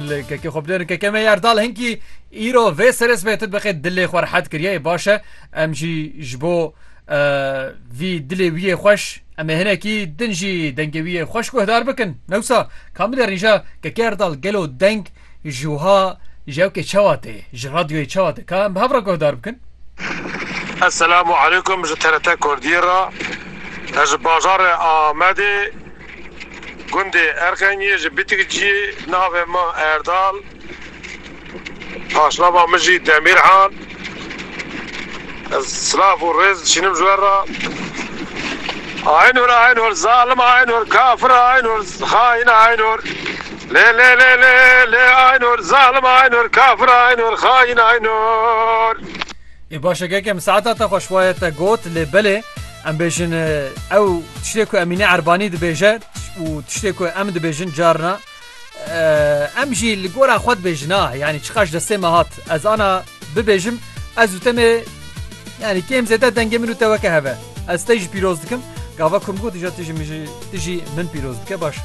Li kekê xwe bidêrin keke me Erdal hinkî îro vê serê sibê tu dibeqê dilê xwe rehet kiriye ê baş e em jî ji bo vî dilê wî yê xweş em ê hinekî din jî dengê wî yê xweş guhdar bikin newsa kam bide rîja keke Erdal gelo deng ji wiha ji ewkê çawa tê ji radyoyê çawa tê ka em bi hev re guhdar bikin Eselamu aleykum ji TRT Kurdî re ez ji bajarê Amedê Gundê Erxengê ji Bitik cî navê min Erdal, paşnava min jî Demîrhan. Ez silav û rêz dişînim ji we re. Aynur Aynur zalim Aynur kafir Aynur xaîn Aynur lê lê lê lê lê Aynur zalim Aynur kafir Aynur xaîn Aynur. Ê baş e keke min saeta te xweş waye te got lê belê em bêjin ew tiştê ku Emîne Erbanî dibêje û tiştê ku em dibêjin carna em jî li gora xwe dibêjin a yanî çiqaş destê me hat ez ana bibêjim ez û te me yanî kêm zêde dengê min û te weke heve ez te jî pîroz dikim gava ku min gotîja tu jî min jî tu jî min pîroz bike baş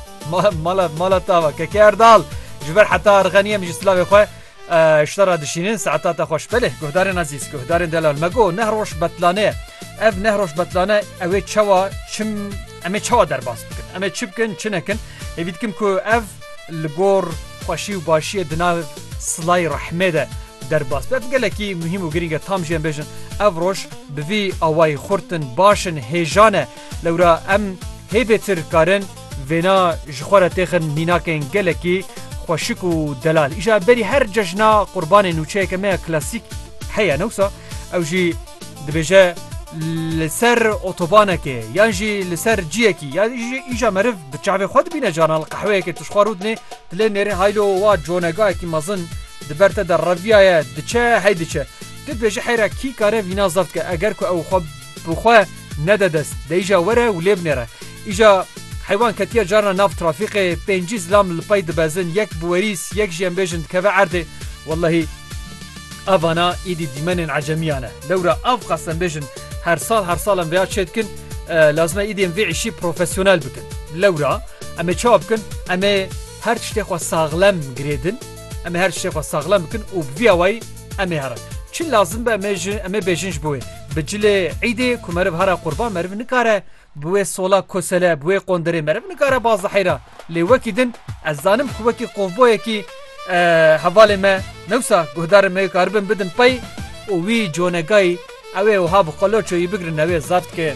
mala mala tava keke erdal ji ber heta erxeniye min jî silavê xwe Ji te re dişînin saeta te xweş belê guhdarên ezîz guhdarên delal me got neh roj betlane ye ev neh roj betlane ew ê çawa çim em ê çawa derbas bikin em ê çi bikin çi nekin hêvî dikim ku ev li gor xweşî û başiyê di nav silayê rehmê de derbas be ev gelekî muhîm û girîng e tam jî em bêjin ev roj bi vî awayî xurt in baş in hêjan e lewra em hêvê tir karin Vêna ji xwe re têxin mînakên gelekî xweşik û delal. Îja berî her cejna qurbanê nûçeyeke me ya klasîk heye ne wisa ew jî dibêje li ser otobanekê yan jî li ser ciyekî ya jî îja meriv bi çavê xwe dibîne canan li qehweyekê tu ji xwe rû dinê dilê nêrê haylo wa conegayekî mezin di ber te de reviyaye diçe hey diçe tu dibêje heyra kî kare vîna zeft ke eger ku ew xwe Bi xwe nede dest, deyîja were û lê binêre. Îja heywan ketiye carna nav trafîqê, pêncî zilam li pey dibezin, yek bi werîs, yek jî em bêjin dikeve erdê. Wellehî ev vana îdî dîmenên ecemiyan e. Lewra ev qas em bêjin her sal her sal em vêya çê dikin, lazim e îdî em vê îşî profesyonel bikin. Lewra em ê çawa bikin? Em ê her tiştê xwe saxlem girêdin, em ê her tiştê xwe saxlem bikin û bi vî awayî em ê herin. Çi lazim be em ê bêjin ji bo wê. Bi cilê îdê ku meriv hara qurban meriv nikare bi wê sola kosele bi wê qonderê meriv nikare baz diheyra lê wekî din ez zanim ku wekî qovboyekî hevalê me newsa guhdarên me karibin bidin pey û wî conegayî ew ê wiha bi qelo çoyî bigrin ew ê zaf dike.